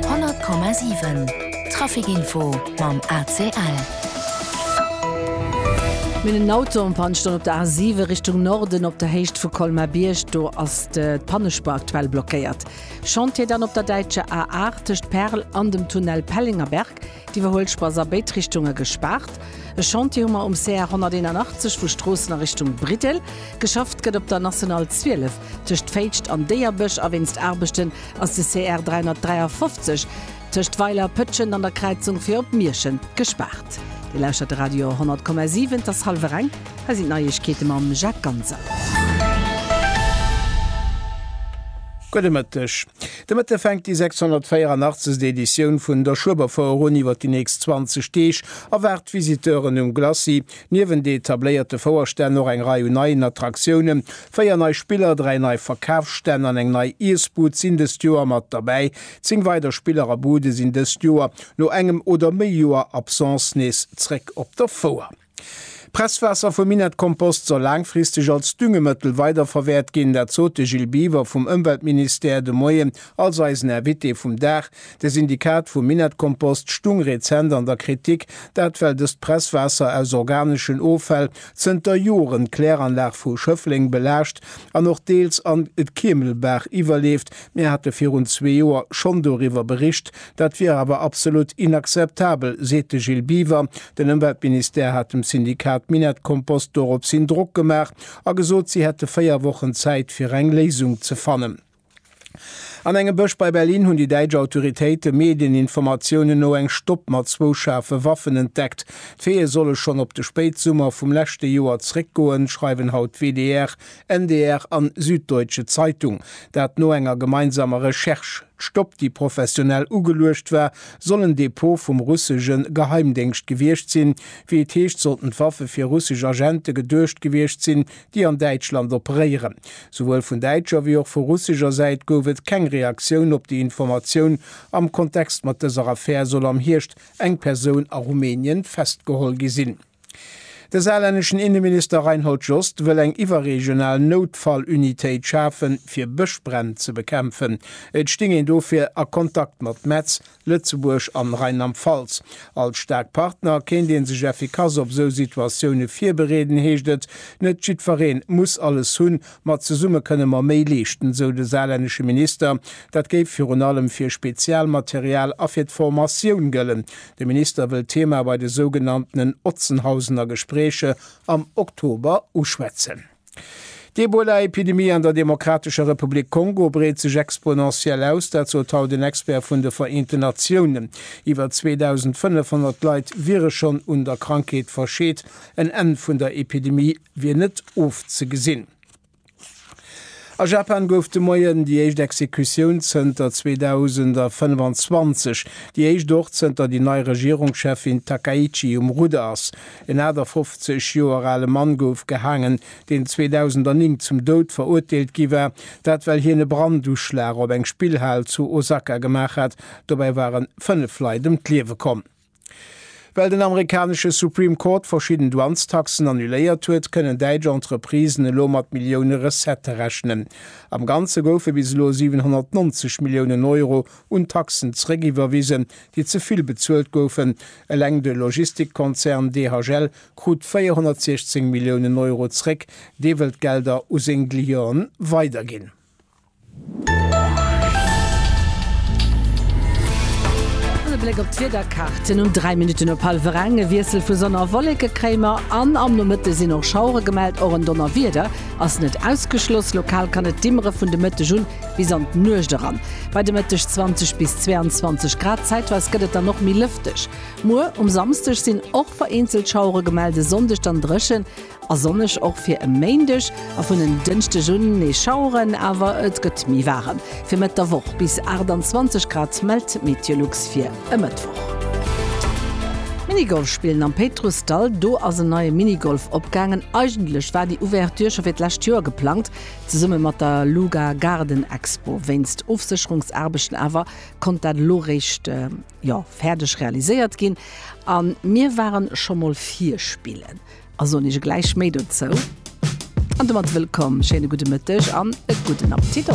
100,7 Trafic Info mam ACL. Mir hunn en Auto en Panne stoen op der A 7 Richtung Norden op der Héicht vu Colmar-Bierg. Do ass de Pannespuer aktuell blockéiert. Chantier dann op der däitscher A 8 tëscht Perl an dem Tunnel Pellengerberg. D'Iwwerhuelspuer ass a béid Richtunge gespaart. E Chantier hu mer um CR 181 vu Stroossen a Richtung Briddel. Geschafft gëtt op der National 12. Tëscht Féitscht an Déierbësch a wéinst Aarbechten ass de CR 353 tëscht Weiler, Pëtschent an der Kräizung fir op Mierschen gespaart. Dir lauschtert de Radio 100,7, et ass hallwer eng, hei sinn d'Neiegkeete mam Jacques Ganser. Gudde Mëtteg. De Mëtte fänkt déi 684. Editioun vun der Schueberfouer un. Iwwer déi nächst 20 Deeg erwaart d'Visiteuren um Glacis Niewent de etabléierte Fouerstänn och eng Rei un neien Attraktiounen. Véier nei Spiller, dräi nei Verkafsstänn an eng nei Iessbud sinn dëst Joer mat derbäi. Zéng weider Spiller a Bude sinn dëst Joer, no engem oder méi Joer Absence, nees zréck op der Fouer. D'Presswaasser vum Minettkompost soll laangfristeg als Düngemëttel weiderverwäert ginn. Dat sot de Gilles Biver vum Ëmweltministère de Moien als eisen Invité vum Dag. De Syndikat vum Minettkompost stung rezent an der Kritik, dat well dëst Presswaasser aus organeschen Offäll zënter Joren d'Kläranlag vu Schëffleng belaascht an och deels an d'Keemelbaach iwwerleeft. Mir hate virun zwee Joer schonn doriwwer bericht, dat wier awer absolut inakzeptabel, seet de Gilles Biwer. Den Ëmweltministère hat dem Syndikat Minettkompost doropshin Drock gemaach a gesot, si hätte véier Wochen Zäit fir eng Léisung ze fannen. An engem Bësch bei Berlin hunn déi däitsch Autoritéite Medieninformatiounen no eng Stopp mat zwou schaarfe Waffen entdeckt. D'Veeë solle schonn op de Spéitsummer vum leschte Joer zeréckgoen, schreiwen haut WDR, NDR an Süddeutsche Zeitung. Dat no enger gemeinsamer Recherche. D'Stopp, déi professionell ugeluecht war, soll en Depot vum russesche Geheimdéngscht gewiescht sinn. Wéi et heescht, sollten d'Waffe fir russesch Agente geduecht gewiescht sinn, déi an Däitschland operéieren. Souwuel vun däitscher wéi och vu russescher Säit gouf et keng Reaktioun op déi Informatioun. Am Kontext mat dëser Affär soll am Hierscht eng Persoun a Rumänien festgeholl gi sinn. De saarlänneschen Inneminister Reinhold Jost wëll eng iwwerregional Noutfall-Unitéit schafen, fir Bëschbränn ze bekämpfen. Et sting een dofir a Kontakt mat Metz. Lëtzebuerg an Rheinland-Pfalz. Als staark Partner kéint een sech effikass op esou Situatioune virbereeden, heescht et. Net jiddweree muss alles hunn, ma zesumme kënne mer méi leeschten, esou de saarlännesche Minister. Dat géif virun allem fir Spezialmaterial a fir d'Formatioun gëllen. De Minister wëll d'Thema bei de sougenanntenen Otzenhausener Gespräche am Oktober uschwätzen. D'Ebola-Epidemie an der Demokratescher Republik Kongo breet sech exponentiell aus, dat sot haut en Expert vun de Vereenten Natiounen. Iwwer 2.500 Leit wiere schonn un der Krankheet verscheet. En Enn vun der Epidemie wier net ofzegesinn. A Japan gouf de Moien déi éischt Exekutioun zënter 2025, déi éischt och zënter déi nei Regierungscheffin Takaichi um Rudder ass. En 58 Joer ale Mann gouf gehaangen, deen 2009 zum Doud verurteelt gi war, dat well hien e Branduschlag op eng Spillhal zu Osaka gemaach hat. Dobäi waren fënnef Leit ëm d'Liewe komm. Well den amerikanesche Supreme Court verschidden Douanestaxen annuléiert huet, kënnen däitsch Entreprisen elo mat Millioune Recettë rechnen. Am Ganze goufe bis elo 790 Milliounen Euro un Taxen zeréckiwwerwisen, déi ze vill bezuelt goufen. Eleng de Logistikkonzern DHL krut 416 Milliounen Euro zeréck. Dee wëll d'Gelder u seng Clienten weiderginn. E Bléck op d'Wiederkaarten um 3 Minutten op hallwer eng. E Wiessel vu Sonn a Wolleke kréie mer an am Nomëtte sinn och Schauere gemellt. Och en Donnerwieder ass net ausgeschloss. Lokal kann et dimmere vun de Mëtteg un bis an d'Nuecht eran. Bei de Mëtteg 20 bis 22 Grad. Zäitweis gëtt et dann och méi lëfteg. Muer um Samsdeg sinn och vereenzelt Schauere gemellt, e Sonndeg dann dréchen. A sonneg och fir e Méindeg a vun en Dënschdeg un nees Schaueren, awer et gëtt méi waarem. Fir Mëtt der Woch bis 28 Grad mellt d'Meteolux fir e Mëttwoch. Minigolf spillen am Péitrussdall, Do ass en neie Minigolf opgaangen. Eigentlech war déi Ouverture scho fir d'lescht Joer geplangt, zesumme mat der Luga Garden Expo. Wéinst Ofsécherungsaarbechten awer konnt dat elo eréischt, jo, fäerdeg realiséiert ginn. A mir ware scho mol vir spillen. A soen iech gläich méi dozou. An domat wëllkomm, schéine gudde Mëtteg an e gudden Appetit!